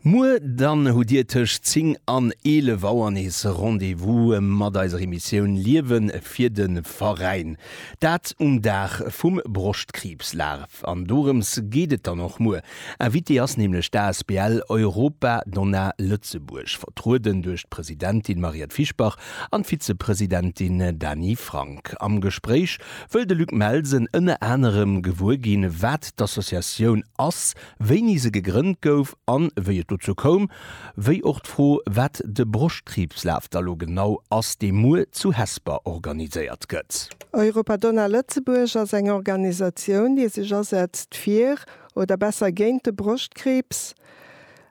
Muer dann hutt Dir tëscht 10 an 11 Auer nees Rendez-vous mat eiser Emissioun Liewe fir de Veräin. Dat um Dag vum Broschtkriibsdag. An dorëms geet et dann och muer. Invitée ass nämlech d'ASBL Europa Donna Lëtzebuerg, vertrueden duerch d'Presidentin Mariette Fischbach an d'Vizepresidentin Dany Frank. Am Gespréich Wëll de Luc Melsen ënner anerem gewuer ginn, wat d'Associatioun ass, wéini se gegrënnt gouf an wéi et dozou koum, wéi och d'Fro, wat de Broschtkriibslaf da lo genau ass, dee muer zu Hesper organiséiert gëtt. Europa Donna Lëtzebuerg ass eng Organisatioun, déi sech asetzt fir, oder besser géint de Broschtkriibs,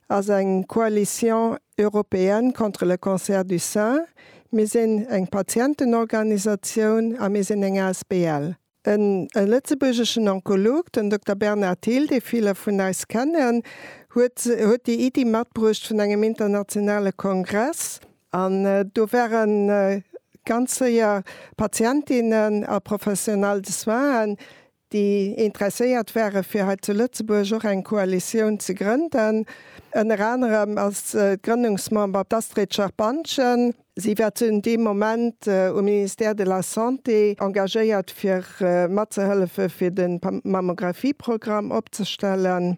ass eng Coalition Européenne contre le cancer du sein, mir sinn eng Patientenorganisatioun a mir sinn eng asbl. E lëtzebuergeschen Onkolog, den Dokter Bernard Thill, dee ville vun eis kennen, huet déi Iddi matbruecht vun engem internationale Kongress. An do ware ganz séier Patientinnen a Professionelle de soinen, déi interesséiert ware fir hei zu Lëtzebuerg och eng Koalitioun ze grënden. Ënner anerem ass d'Grënnungsmember d'Astrid Scherpantgen. Si war zu deem Moment um Ministère de la Santé engagéiert fir matzehëllefe fir de Mammographieprogramm opzestellen.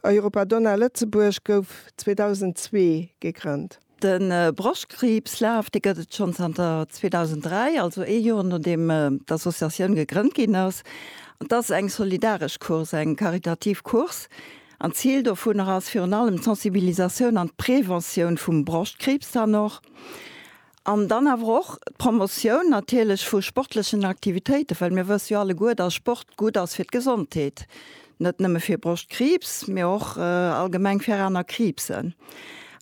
Europa Donna Lëtzebuerg gouf 2002 gegrënnt. De Broschtkriibs Laf, dee gëtt et schonn zanter 2003, also ee Joer nodeem d'Associatioun gegrënnt ginn ass. Dat ass eng solidaresch Course, eng karitativ Course an d'Zil dovunner ass virun allem d'Sensibilisatioun an d'Preventioun vum Broschtkriibs dann och An dann awer och d'Promotioun natierlech vu sportlechen Aktivitéiten, well mir wësse jo alleguer, dass Sport gutt ass fir d'Gesondheet, net nëmme fir Broschtkriibs, mee och allgemeng fir aner Kriibsen.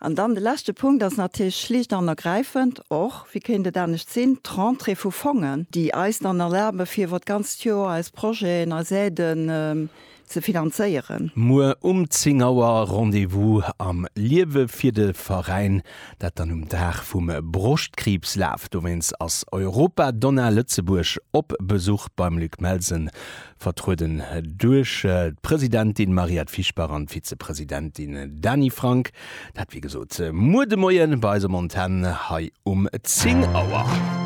An dann de leschte Punkt ass natierlech schlicht an ergräifend och, wéi kéint et anescht sinn, d'Rentrée vu Fongen, déi eis dann erlaben, fir iwwer d'ganzt Joer eis Projeten, eis Aiden, ze finanzéieren. Muer um 10 Auer Rendez-vous am Liewe fir de Veräin, dat dann um Dag vum Broschtkriibslaf. Dowéinst ass Europa-Donna Lëtzebuerg op Besuch beim Luc Melsen, vertrueden duerch d'Presidentin Mariette Fischbach an d'Vizepresidentin Dany Frank. Dat wéi gesot muer de Moien bei eis um Antenn hei um 10 Auer.